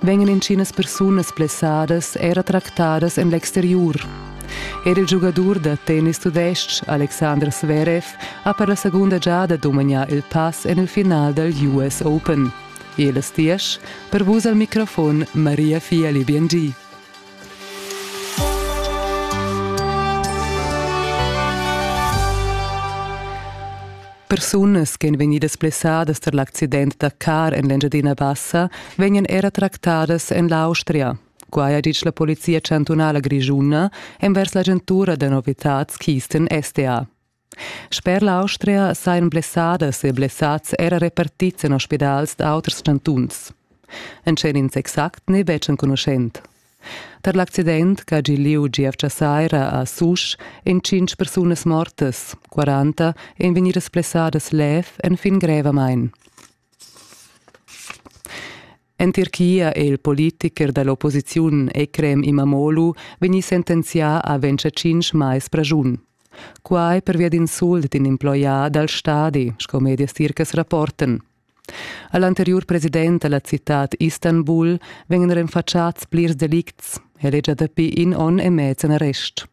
vegnan inschinas persunas blessadas era tractadas en l'exteriur. Er il giugadur da tennis tudestg Alexander Zverev ha per la segunda giada dumagnà il pass en il final dal US Open. E las diesch per vus al microfon Maria Fiali Biengi. Persunas che èn vegnidas blessadas tar l'accident da car en l'Engiadina Bassa vegnan era tractadas en l'Austria. Quai ha ditg la Polizia chantunala grischuna envers l'agentura da novitads Kisten SDA. Sper l'Austria sajan blessadas e blessads era repartids en ospidals d'auters chantuns. En tschernins exact n'è betg enconuschent. Per l'accident che ha gi liu gievgia saira a Susch èn tschintg persunas mortas, 40 èn vegnidas plessadas lev enfin grevamain. En Tirchia è il politicher da l'opposiziun Ekrem Imamoglu vegnì sentenzià a 25 mais pragiun. Quai pervia d'insult d'in emploià dal stadi, sco medias tircas rapportan. A l'anteriur president da la citad Istanbul vegnan renfatschats plirs delicts. El è gia dapi in onn e mez en arrest.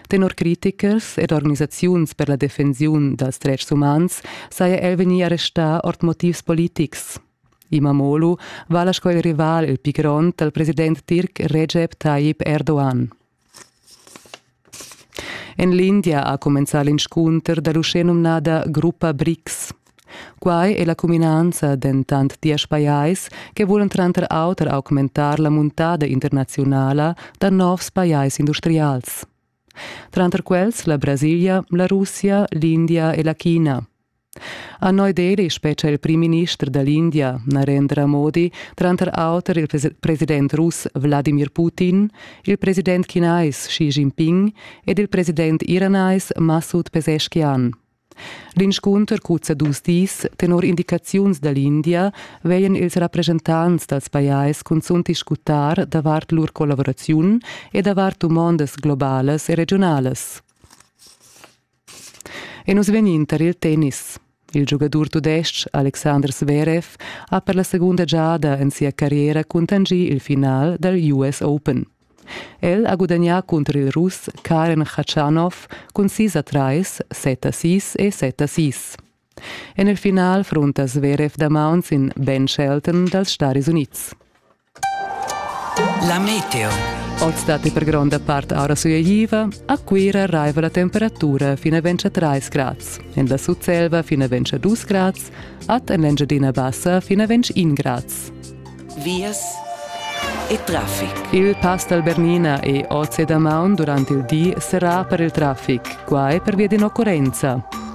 Tenor critichers ed organisaziuns per la defensiun dals dretgs umans saja el vegnì arrestà ord motivs politics. Imamoglu vala sco il rival il pli grond dal president tirc Recep Tayyip Erdogan. En l'India ha cumenzà l'inscunter da l'uschenumnada gruppa BRICS. Quai è la cuminanza dentant diesch pajais che vulan tranter auter augmentar la muntada internaziunala da novs pajais industrials. Tranter quels la Brasilia, la Russia, l'India e la China. A noi deri spetga il primminister da l'India, Narendra Modi, tranter auter il president russ Vladimir Putin, il president chinais Xi Jinping ed il president iranais Masud Pezeshkian. L'inscunter cuzza dus dis tenor indicaziuns da l'India veien ils rappresentants dals pajais cunzunt discutar davart lur collaboraziun e davart dumondas globalas e regionalas. E nus vegnin tar il tennis. Il giugadur tudestg Alexander Zverev ha per la segunda giada en sia carriera cuntanschì il final dal US Open. El ha gudagnà cunter il Russ Karen Khachanov cun sis a trais, set a sis e set a sis. En il final frunta Zverev damaun sin Ben Shelton dals Staris Unids. La meteo. Oz datti per gronda part aura sulegliva. A Cuira raiva la temperatura fina ventscha 3 grads. En la Sutselva fina ventscha 2 grads. Ad en l'Engiadina Bassa fina ventg 1 grads. Vias e traffic. Il pass dal Bernina e Oz e Damaun durante il di serrà per il traffic. Qua è per via d'inoccurrenza.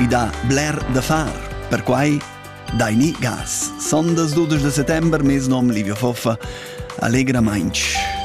I dà bler da far. Perquai daini gas. Sondas 12 da settember, mes nom Livio Foffa, allegramainch.